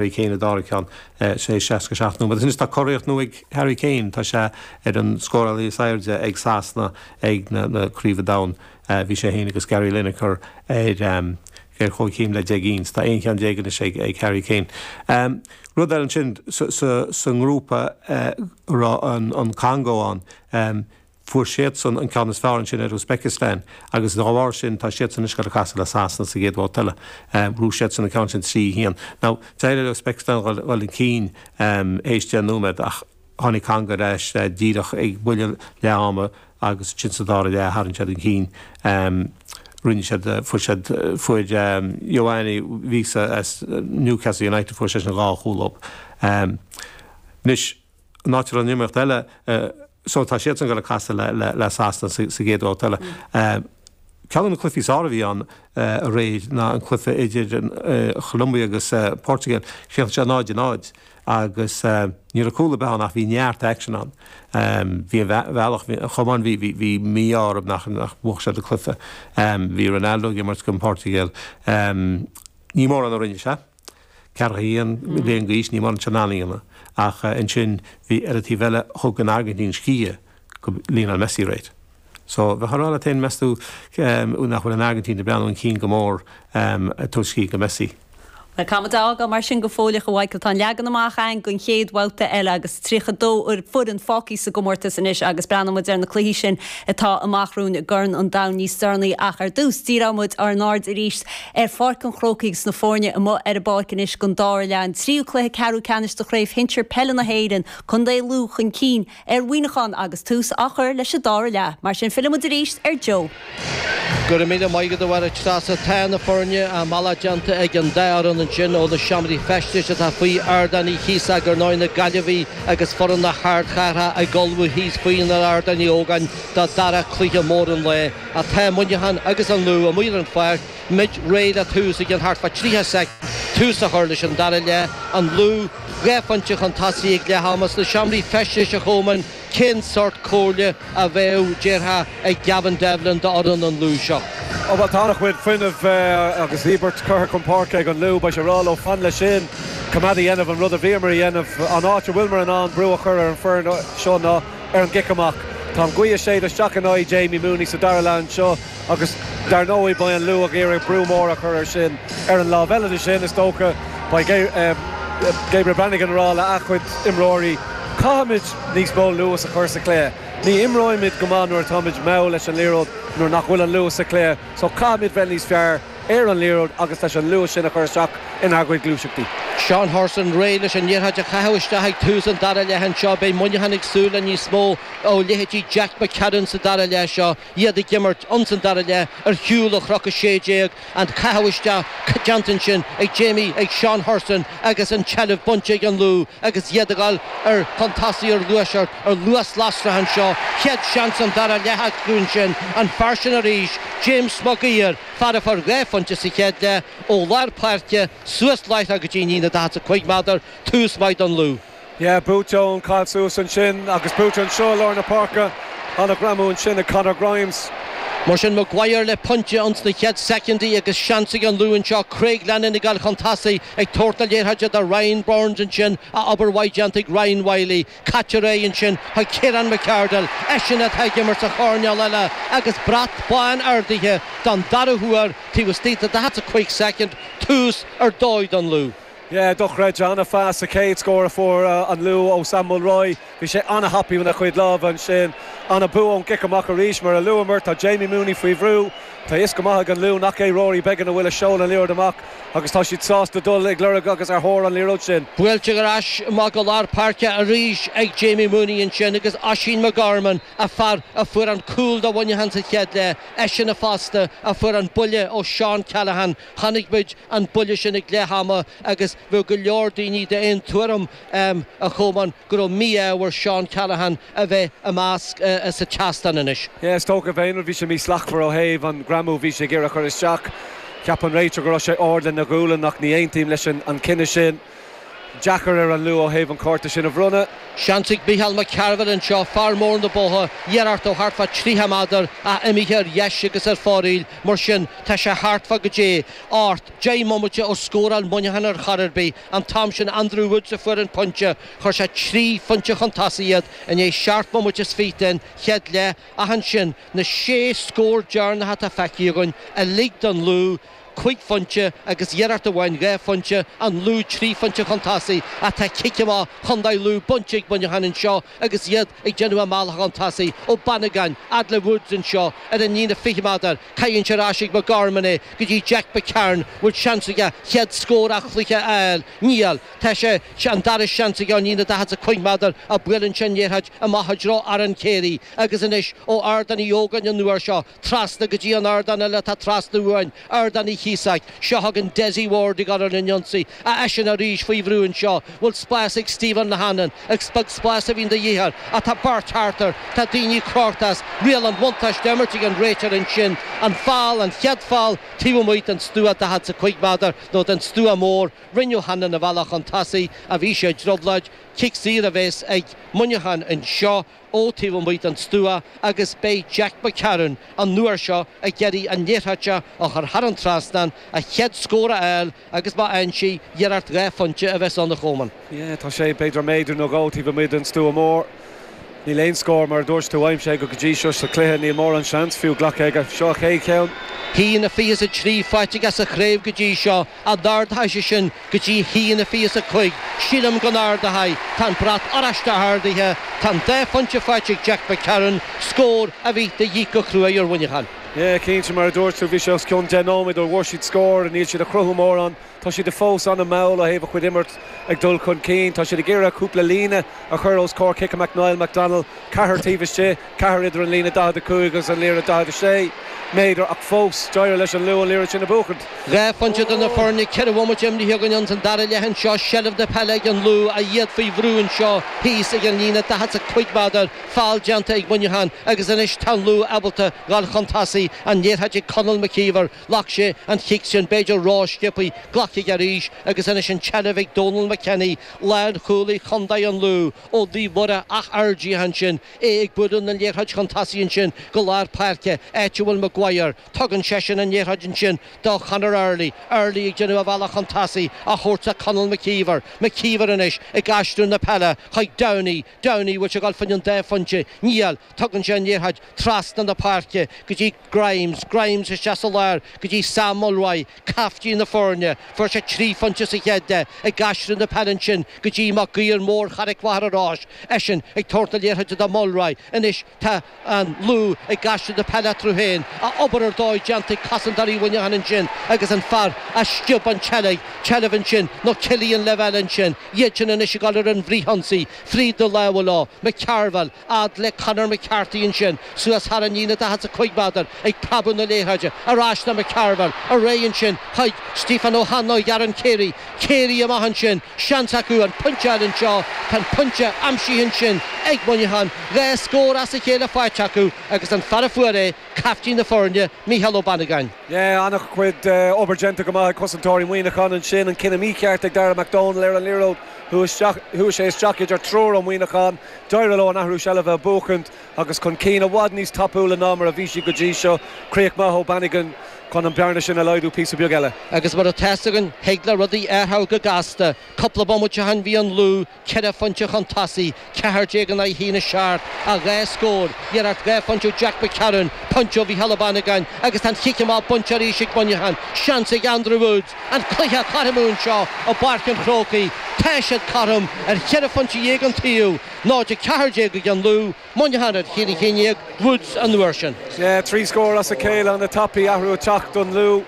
Harry Kane a d'ardaigh ceann tar éis 67 nóiméad. Anois tá curiarracht nua ag Harry Kane, tá sé ar an scórálaí is airde ag Sasana ag na Craobhacha Domhain. Bhí sé féin agus Gary Lineker ar chomhchéim le deich gcinn. Tá aon cheann déag anois ag Harry Kane. Rud eile ansin, sa ngrúpa a raibh an Congó ann, Fuair siadsan an ceann is fearr ansin ar Uzbekistan agus dá bharr sin tá siadsan anois ag casadh le Sasana sa gcéad bhabhta eile. Bhuaigh siadsan an ceann sin trí haon. Now, d'éirigh le Uzbekistan dhul chun cinn théis deich nóiméad ach tháinig Congó ar ais díreach ag buille leath ama agus ansin sa dara leath tharraing siad chun cinn. Rinne siad, fuair siad, fuair Yoane Wissa as Newcastle United, fuair seisean dhá chúl. Anois. an áit a raibh an iomaíocht eile, so tá siadsan ag dul ag casadh le Sasana sa gcéad bhabhta eile. Ceann de na cluichí is fearr a bhí ann aréir ná an cluiche idir Colombia agus an Portugal. Chríochnaigh sé 0 - 0 agus ní raibh cúl ar bith ann ach bhí neart aicsin ann. Bhí ar bhealach, bhí an chumann, bhí mí-ádh orthu nach mbuaigh siad an cluiche. Bhí Ronaldo ag imirt don Portugal. Ní mórán a rinne sé. tá sé ceathracha haon bliain d'aois, ní muis, anois. Ach ansin bhí ar an taobh eile, thug an Airgintín scíth go Lionel Messi, right? So bheifeá a rá leat féin, meas tú, nach bhfuil an Airgintín ag breathnú chun cinn go mór ag tabhairt scíth go Messi? Bhuel, caithfidh muid é a fhágáil mar sin go fóilleach, a Mhichael. Tá an leagan amach againn don chéad bhabhta eile agus 32 foireann fágtha sa gcomórtas anois agus breathnóidh muid ar na cluichí sin atá amach romhainn i gCorn an Domhain níos deireanaí ach ar dtús, díreoidh muid ár n-aird arís ar Pháirc an Chrócaigh agus na foirne amuigh ar an bpáirc anois don dara leath, an tríú cluiche ceathrú ceannais de Chraobh Shinsir Peile na hÉireann, contae Lú chun cinn ar Mhuineachán agus tús á chur leis an dara leath. Mar sin, fillfidh muid arís ar Joe. Go raibh míle maith agat, a Mháire Treasa. Tá na foirne, a mbealach déanta ag an dá fhoireann ansin ó na seomraí feistis atá faoi ardán thíos agus ar ndóigh, na Gaillimhigh agus foireann na hardchathrach ag ullmhú thíos faoin Ardán Uí Ógáin don dara cluiche mór an lae. Ach tá Muineachán agus an Lú amuigh ar an pháirc, muid réidh le tús i gceann thart fá 30 soicind, tús a chur leis an dara leath, an Lú dhá phointe chun tosaigh ag leath ama sna seomraí feistis a Chomáin, cén sórt comhairle a bheadh, déarfá, ag Gavin Devlin d'fhoireann an Lú seo? Ó bhuel, tá an-chuid fuinnimh agus íobairt curtha chun páirce ag an Lú, beidh sé ag rá leo, fan leis sin, coimeád a dhéanamh an rud a bhíomar a dhéanamh. An áit a bhfuilmar in ann brú a chur ar an bhfoireann seo ná. ar an gcic amach. Tá an ghaoth ag séideadh isteach in aghaidh Jamie Mooney sa dara leath anseo agus dar ndóigh beidh an Lú ag iarraidh brú mór a chur air sin. Ar an lámh eile de sin, is dócha, beidh Gabriel Bannigan ag rá le a chuid imreoirí, 'caithfimid níos mó luas a chur sa chluiche. Ní imrímid go maith nuair atáimid mall leis an liathróid nuair nach bhfuil an luas sa chluiche, só caithfimid bheith níos fearr. ar an liathróid agus leis an luas sin a chur isteach inár gcuid gluaiseachtaí. Seán Hurson réidh leis an liathróid a chaitheamh isteach ag tús an dara leath anseo. Beidh Muineachán ag súil le níos mó ó leithéidí Jack McCarron sa dara leath seo, iad ag imirt ins an dara leath ar shiúl ó Chnoc 16, an caitheamh isteach déanta ansin ag Jamie ag Seán Hurson Agus an tseilbh bainte ag an Lú agus iad ag dul ar chun tosaigh ar luas ar luas lasrach anseo, chéad seans an dara leath acu ansin, an fear sin arís, James Maguire, fear a fuair dhá phointe sa chéad leath ó lár páirce, suas láithreach go dtí líne na 45 meadar, tús maith don Lú. Yeah, buaite ón caith suas ansin agus buaite anseo i lár na páirce. An-ghreamú ansin ag Conor Grimes. Mar sin, Maguire le pointe ins na chéad soicindí agus seans ag an Lú anseo Craig Lennon ag dul chun tosaigh, ag tabhairt na liathróide do Ryan Burns ansin, ach obair mhaith déanta ag Ryan Wylie. Caitear é ansin chuig Kieran McArdle, eisean atá ag imirt sa choirnéal eile agus brat bán ardaithe don dara huair taobh istigh de 45 soicind, tús ar dóigh don Lú. Dochreidte. An phas sa chéad scór a fuair an Lú ó Sam Mulroy. Bhí sé an-thapaidh lena chuid láimhe ansin. An-bua ón gcic amach arís. Mar a luamar, tá Jamie Mooney faoi bhrú. Tá a fhios go maith ag an Lú nach é Rory Beggan a bhfuil ag seoladh an liathróid amach agus tá siad sásta dul ag lorg agus ar thóir an liathróid sin. Buailtear ar ais amach go lár páirce arís ag Jamie Mooney ansin agus Oisín McGorman, a fear a fuair an cúl do Mhuineachán sa chéad leath, eisean fosta a fuair an buille ó Seán Callaghan Chonaic muid an buille sin ag leath ama agus bheadh go leor daoine d'aon tuairim, ámh, a Cholmáin, go raibh mí-ádh ar Seán Callaghan a bheith i measc sa tseastán anois. Is dócha b'fhéidir, bhí sé mí-shlachtmhar ó thaobh an greamú bhí sé ag iarraidh a chur isteach. Cheap an réiteoir go raibh sé ard lena ghualainn ach ní aontaím leis an chinneadh sin. deacair ar an Lú ó thaobh an cárta sin a bhronnadh. Seans ag Micheál Mac Cearbhaill anseo, fear mór na Botha, iarracht ó thart fá 30 meadar, ach imithe ar dheis agus ar fóraoil, mar sin tá sé thart fá goidé, ocht, deich mbomaite ó scóráil Muineachán ar chor ar bith, an t-am sin Andrew Woods a fuair an pointe, chuir sé trí phointe chun tosaigh iad i ndiaidh seacht mbomaite is fiche den chéad leath, ach ansin, na sé scór deireanacha atá feicthe againn, uilig don Lú, cúig phointe agus iarracht amháin dhá phointe, an Lú trí phointe chun tosaigh ach tá cic amach Chontae Lú bainte ag Muineachán anseo agus iad ag déanamh a mbealach chun tosaigh. Ó Bannigan fhad le Woods anseo ar an líne 20 meadar, caitheann sé ar ais ag McGorman é go dtí Jack McCarron bhfuil seans aige chéad scór a' chluiche a fháil? Níl. Tá sé Tá an dara seans aige ón líne 45 meadar ach buaileann sé an liathróid amach i dtreo Aaron Carey agus anois ó Ardán Uí Ógáin an uair seo, Trasna go dtí an ardán eile atá trasna uainn, Ardán Uí Chíosóig. Seo chugainn Dessie Ward ag obair ar an ionsaí, a eisean arís faoi bhrú anseo. Bhfuil spás ag Stephen O'Hanlon? Agus is beag spás a bhíonn de dhíth air, ach tá beirt thart air, tá daoine crochta as. Riail an bhuntáiste imeartha ag an réiteoir ansin. An foul, an chéad foul taobh amuigh den stua, daichead 's a cúig méadar, nó den stua mór. Rinne O'Hanlon a bhealach chun tosaigh, a bhí sé i dtrioblóid. Cic saor a bheas ag Muineachán anseo. ó taobh amuigh den stua agus beidh Jack McCarron an uair seo ag iarraidh an liathróid a chur thar an trasnán, a chéad scór a fháil agus má fhaigheann sé, iarracht dhá phointe a bheas ann, a Chomáin. Yeah, tá sé b'fhéidir méadar nó dhó taobh amuigh den stua mór. Níl aon scór, mar a dúirt tú, aimsithe aige go dtí seo sa chluiche. Níl mórán seans fiú glactha aige. Seo a chéad cheann. A haon 23 faighte aige sa chraobh go dtí seo. an ardóidh sé sin go dtí a haon fiche 's a cúig, sílim go n-ardóidh, tá an brat oráiste ardaithe, tá an dá phointe faighte ag Jack McCarron, scór a bhí de dhíth go cruaidh ar Mhuineachán. Yeah, cinnte, mar a dúirt tú, bhí sé os cionn deich nóiméad ó bhfuair siad scór, níl siad ag chruthú mórán, tá siad a fós an-mhall ó thaobh a chuid imirt ag dul chun cinn, tá siad ag iarraidh cúpla líne a chur os comhair cic amach Niall McDonnell, ceathrar taobh istigh. Ceathrar idir an líne 45 agus an liathróid 46 méadar ach fós d'éirigh leis an Lú an liathróid sin a bhuachaint. Dhá phointe idir na foirne ceithre bhomaite imithe againn ins an dara leath anseo, seilbh na peile ag an Lú a iad faoi bhrú anseo thíos ag an líne 45 méadar, foul déanta ag Muineachán agus anois tá an Lú ábalta dhul chun tosaigh, an liathróid ag Conall McKeever, ghlac sé an chic sin b'fhéidir ró-sciobthaí, glacfaidh arís agus anois an tseilbh ag Donal McKenny, lánchúlaí Chondae an Lú, ó Naomh Mhuire Áth Fhirdhia ansin, é ag bualadh na liathróide chun tosaigh ansin go lár páirce, áit a bhfuil Maguire. Tugann seisean an liathróid ansin do Conor Early, Early ag déanamh a bhealach chun tosaigh a thabhairt do Conall McKeever, McKeever anois ag aistriú na peile chuig Downey, Downey an bhfuil sé ag dul faoin an dá phointe, níl, tugann sé an liathróid trasna na páirce go dtí. Grimes, Grimes isteach sa lár go dtí Sam Mulroy, caiftín na foirne, fuair sé trí phointe sa chéad leath, ag aistriú na peile ansin go dtí Maguire mór Charraig Mhachaire Rois, eisean ag tabhairt na liathróide do Mulroy, anois tá an Lú ag aistriú na peile eatarthu féin, a obair ar dóigh déanta ag cosantóirí Mhuineacháin ansin agus an fear a sciob an tseilbh, tseilbh ansin nó Killian Lavelle ansin, iadsan anois ag dul ar an bhfrithionsaí, fríd na lámha leo, McCarville, fhad le Conor McCarthy ansin suas thar an líne, 45 méadar, ag preabadh na liathróide ar ais le McCarville, ar aghaidh ansin, chuig Stephen O'Hanlon go Aaron Carey. Carey amach ansin, seans acu an pointe a fháil anseo. Tá an pointe aimsithe ansin ag Muineachán, dhá scór as a chéile faighte acu agus an fear a fuair é, caiftín na foirne, Mícheál Ó Banagáin. Yeah, an-chuid obair déanta go maith ag cosantóirí Muineachán ansin, an cinneadh mícheart ag Dara McDonnell ar an liathróid, chuaigh sé isteach idir triúr ó Muineachán. D'éirigh leo an athrú seilbhe a bhuachaint agus chun cinn i bhfad níos tapúla ná mar a bhí siad go dtí seo, críoch maith ó Bannigan chun an bhearna sin a laghdú píosa beag eile. Agus mar atá fhios againn, thig le rudaí athrú go gasta. Cúpla bomaite ó shin bhí an Lú ceithre phointe chun tosaigh, ceathair déag in aghaidh a haon a seacht, ach dhá scór, iarracht dhá phointe ó Jack McCarron, pointe ó Mhicheál Ó Bannagáin agus tá an chic amach bainte arís ag Muineachán. Seans ag Andrew Woods! An cluiche cothrom anseo i bPáirc an Chrócaigh, tá siad cothrom ar cheithre phointe dhéag an taobh, 0-14 ag an Lú, Muineachán ar cheithre cinn déag, Woods an uair sin. Trí scór as a chéile an-tapaidh athrú ag teacht don Lú.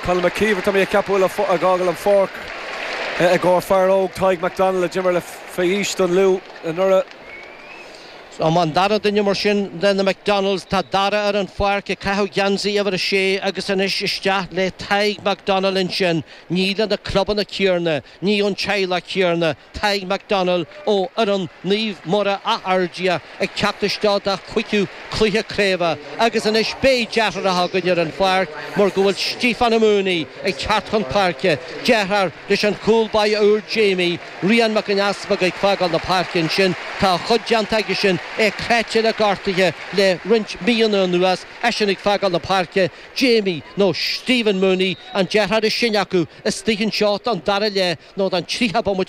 Conall McKeever, tá mé ag ceapadh, a bhfuil ag fágáil an pháirc i gcomhair fear óg Tadhg McDonnell a d'imir le faoi aois don Lú anuraidh. Nó má an dara duine mar sin de na McDonnells tá Dara ar an pháirc ag caitheamh geansaí uimhir a sé agus anois isteach le Tadhg McDonnell ansin, ní le na clubanna céanna, ní ón teaghlach céanna, Tadhg McDonnell ó fhoireann Naomh Muire Áth Fhirdhia ag teacht isteach dá chúigiú cluiche craoibhe agus anois beidh deartháireacha againn ar an pháirc mar go bhfuil Stiofán Ó Maonaigh ag teacht chun páirce, deartháir leis an chúl báire úr Jamie. Rian Mac an Easpaig ag fágáil na páirce ansin. Tá a chuid déanta aigesean, é cráite le gortuithe le roinnt míonna anuas, eisean ag fágáil na páirce, Jamie, nó Stephen Mooney, an deartháir is sine acu, istigh anseo don dara leath nó don tríocha bomaite